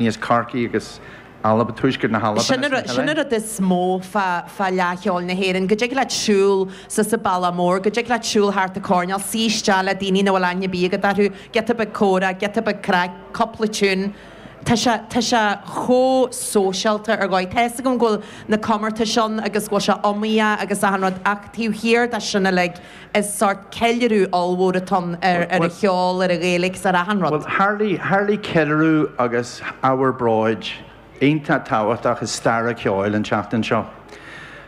Níos Corcaí agus Alba, tuaisceart na hAlban is na hUle. Sin an rud is mó fá Fhleadh Cheoil na hÉireann, go dtig leat siúl suas an Bealach Mór, go dtig leat siúl thart an coirnéal, suí isteach le daoine nach bhfuil aithne ar bith agat orthu, giota beag comhrá, giota beag craic, cúpla tiún. Tá sé, tá sé chomh sóisialta ar dhóigh. Tá fhios agam go bhfuil na comórtais ann agus go bhfuil sé iomaíoch agus achan rud ach taobh thiar de sin uilig, Is sórt ceiliúradh ollmhór atá ann ar an cheol, ar an Ghaeilge is ar achan rud. Bhuel, tharlaigh ceiliúradh agus ábhar bróid iontach tábhachtach i stair an cheoil an tseachtain seo.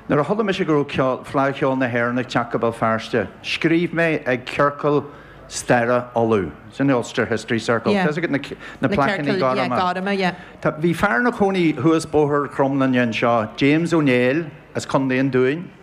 Nuair a chuala mise go raibh Fleadh Cheoil na hÉireann ag teacht go Béal Feirste, scríobh mé ag Ciorcal Staire Uladh, sin é Ulster History Circle, tá a fhios agat na plaiceanna gorma? Bhí fear ina chónaí thuas Bóthar Chromghlinne anseo, James Ó Néill as Contae an Dúin.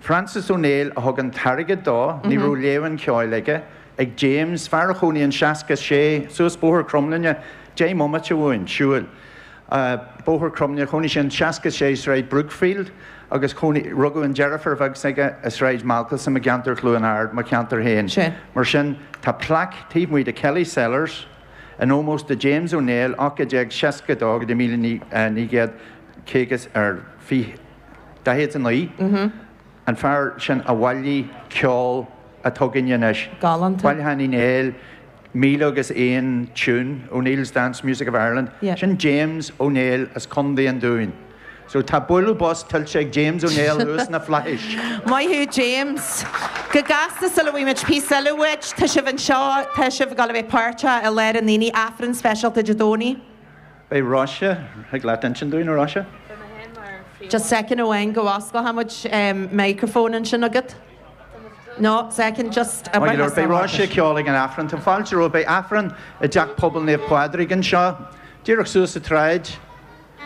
Francis Ó Néill a thug an t-airgead dó, ní raibh léamh an cheoil aige, ach James, fear a chónaigh in 66 suas Bóthar Chromghlinne, deich mbomaite uainn, siúil, Bóthar Chromghlinne, chónaigh sé in 66 Sráid Brookfield agus chónaigh, rugadh an deirfiúr bheag s'aige i Sráid Malcolmson i gceantar Chluain Ard, mo cheantar féin. Sea. Mar sin, tá plaic taobh amuigh de Kelly's Cellars in ómós do James Ó Néill, 1862 go dtí míle naoi gcéad caoga ar fiche. 49. An fear sin a bhailigh ceol atá againne anois, bailiúchán Uí Néill, míle agus aon tiún, O'Neill's Dance Music of Ireland, sin James Ó Néill as Condae an Dúin. So tá bualadh bos tuillte ag James Ó Néill thuas sna Flaithis. Maith thú James. Go gasta sula bhfaigheann muid píosa eile uait, tá sibh anseo, tá sibh ag dul a bheith páirteach i lár an aonaigh, Aifreann speisialta Dé Domhnaigh. Beidh, Róise, thig leat insint dúinn, a Róise. Just second amháin go bhfosclóchaimid microphone ansin agat. No, second, just. Maith go leor, beidh Róise ag ceol ag an Aifreann. Tá fáilte romhaibh, beidh Aifreann i dTeach Pobail Naomh Pádraig anseo, díreach suas an tsráid,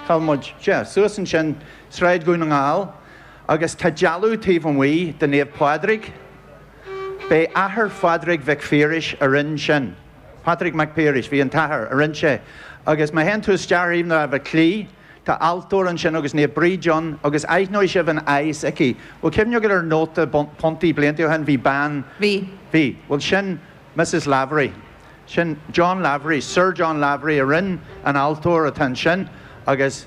cá bhfuil muid, sea, suas ansin, Sráid Dhún na nGall, agus tá dealbh taobh amuigh de Naomh Pádraig, b'é athair Phádraig Mhic Phiarais a rinn sin. Patrick Mac Piarais, Bhí an t-athair, a rinn sé, agus má théann tú isteach ar thaobh na láimhe clí, tá altóir ansin agus Naomh Bríd ann agus aithneoidh sibh an aghaidh s'aici. Bhfuil cuimhne agaibh ar nóta puntaí blianta ó shin bhí bean, Bhí. bhí, bhuel sin Mrs Lavery, sin John Lavery, Sir John Lavery a rinn an altóir atá ansin agus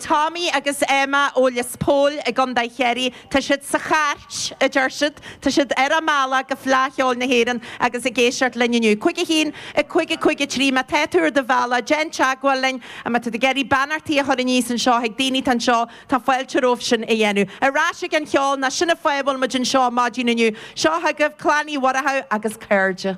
Tommy agus Emma ó Lios Póil i gContae Chiarraí. Tá siad sa chairt, a deir siad. Tá siad ar a mbealach go Fleadh Cheoil na hÉireann agus ag éisteacht linn inniu. 51. 50. 53. Má tá tú ar do bhealach, déan teagmháil linn. Má tá tú ag iarraidh beannachtaí a chur aníos anseo chuig daoine atá anseo, tá fáilte romhaibh sin a dhéanamh. Ar ais ag an cheol, nó sin an fáth a bhfuil muid anseo maidin inniu. Seo chugaibh Clann Uí Mhuireadhaigh agus cairde.